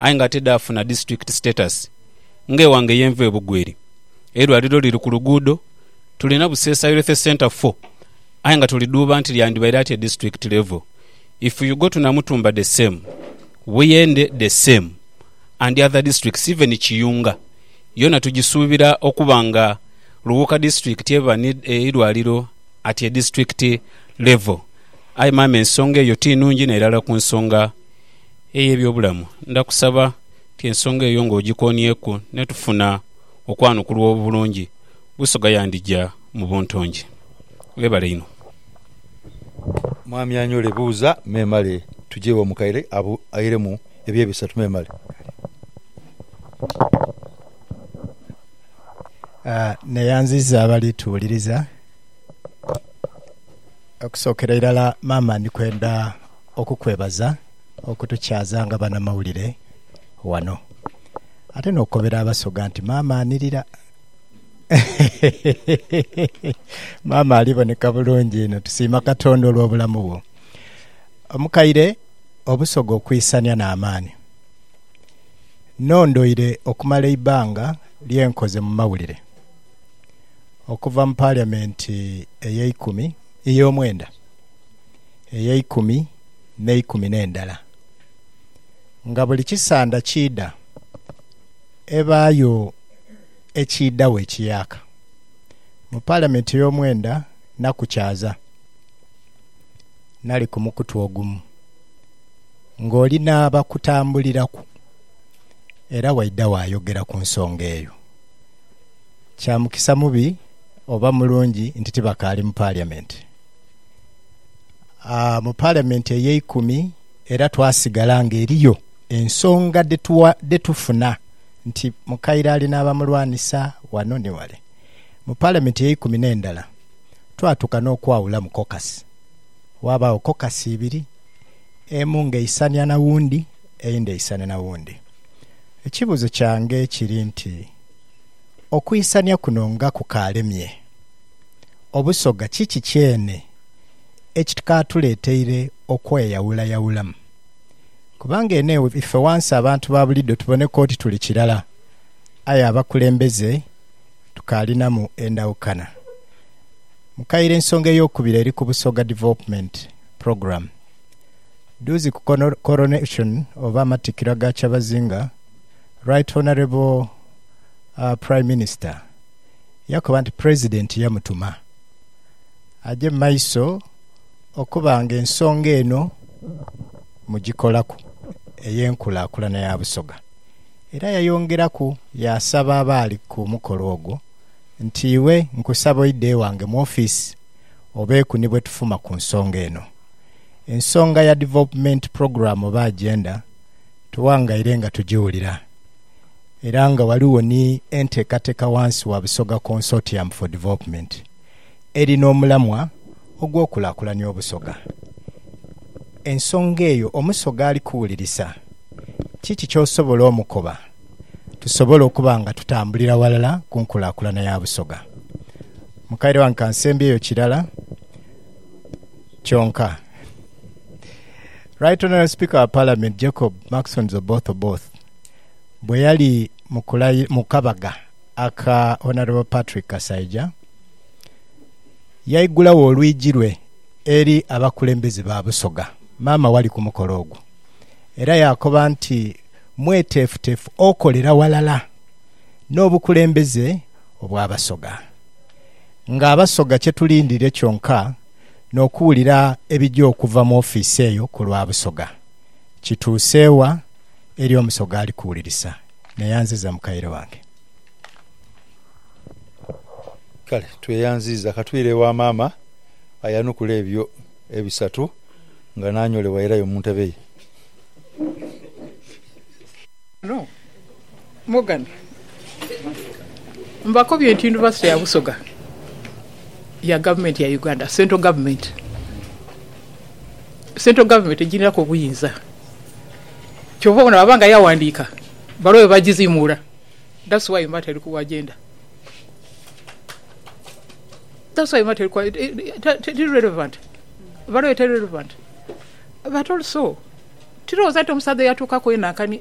aye nga tidhaafuna disiturikiti status nga ewange yenva e Bugweri. Eirwaliro liri ku luguudo, tulina Buseesa Healthy Centre four aye nga tulidhuuba nti lyandibaire ati e disiturikiti level. If you go to Namutumba the same, Buyende the same and other districts even Kiyunga yoona tugisuubira okuba nga Luwuuka disiturikiti eba n'eirwaliro at a district level. Aye maama ensonga eyo ti nungi n'erala ku nsonga. ey'eby'obulamu, ndakusaba nti ensonga eyo ng'ogikoonyeku ne tufuna okwanukulwa obulungi, Busoga yandija mu buntungi. Webale inho. Mwami anyole buuza memale tuje ewa mukaire airemu ebye bisatu memale. Neyanziza abali tuwuliriza. Okusookera irala maama ndikwenda. okukwebaza okutukyaza nga banamawulire wano ate n'okukobera Abasoga nti maama anirira. Maama ali boneka bulungi inho. Tusiima Katonda olw'obulamu bwo. Omukaire, Obusoga okwisania n'amaani. Nnondoire okumala eibanga lye nkoze mu mawulire okuva mu Parliament ey'eikumi, ey'omwenda. Ey'eikumi n'eikumi n'endala, nga buli kisanda kiidha ebaayo ekiidhagho ekiyaaka mu Paalamenti ey'omwenda nakukyaza nali ku mukutu ogumu ng'oli n'abakutambuliraku era waidha waayogera ku nsonga eyo. Kya mukisa mubi oba mulungi nti tibakaali mu Paliamenti. mu Palamenti ey'eikumi era twasigala nga eriyo ensonga dhe tufuna nti mukaire ali n'abamulwanisa ghano ni ghale. Mu Palamenti ey'eikumi n'endala twatuuka n'okwawulamu kokasi, ghabaagho kokasi ibiri, emu ng'eisania na wundi eyindi eisane na wundi. Ekibuuzo kyange kiri nti, okuisania kuno nga kukaalemye? Obusoga kiki kyene ekikaatuleeteire okweyawulayawulamu? Kubanga eno ife wansi abantu ba bulido tuboneka oti tuli kirala, aye abakulembeze tukaalinamu endawukana. Mu kaire ensonga ey'okubiri eri ku Busoga Development Program. Dduuzi ku Coronation oba Amattikira ga Kyabazinga, Right Honourable Prime Minister, Yakoba nti Pulezidenti yamutuma aje mu maiso okuba nga ensonga eno mugikolaku ey'enkulaakulana ya Busoga. Era yayongeraku yaasaba abaali ku mukolo ogwo nti, Iwe nkusaba oide ewange mu ofiisi obeeku ni bwe tufuma ku nsonga eno. Ensonga ya Development Program oba Agenda tuwangairenga tugiwulira. era nga ghaligho ni enteekateka ghansi wa Busoga Consortium for Development eri n'omulamwa ogw'okulakulania Obusoga. Ensonga eyo Omusoga ali kuwulirisa, kiki ky'osobola omukoba tusobole okuba nga tutambulira ghalala ku nkulakulana ya Busoga? Mukaire wange kansembyeyo kirala kyonka. Right Honourable Speaker wa Parliament Jacob Maxons Oboth Oboth, bwe yali mu kabaga aka Honourable Patrick Kasaija, yaigulagho olwigi lwe eri abakulembeze ba Busoga, maama wali ku mukolo ogwo, era yaakoba nti mweteefuteefu okolera ghalala n'obukulembeze obw'Abasoga. Ng'Abasoga kye tulindiire kyonka n'okuwulira ebija okuva mu ofiisi eyo ku lwa Busoga. Kituuse wa? eri omusoga ali kuwulirisa, naye anziza mukaire wange. Kale tweyanziiza katwire ewa maama ayanukule ebyo ebisatu nga n'anyolebwa airayo mu ntebe ye. Kano Morgan mbakobye nti Yunivasite ya Busoga ya Gavumenti ya Uganda, Central Government. Central Government egirinaku obuyinza. Kyova obona baba nga yawandiika bbaluwa eyo bajizimuula that's why mba teri kuwa agenda that's why mba teri kuwa teri relevant bbaluwa eyo teri relevant but also tirowoza nti omusaadha eyatuukaku eyo nankani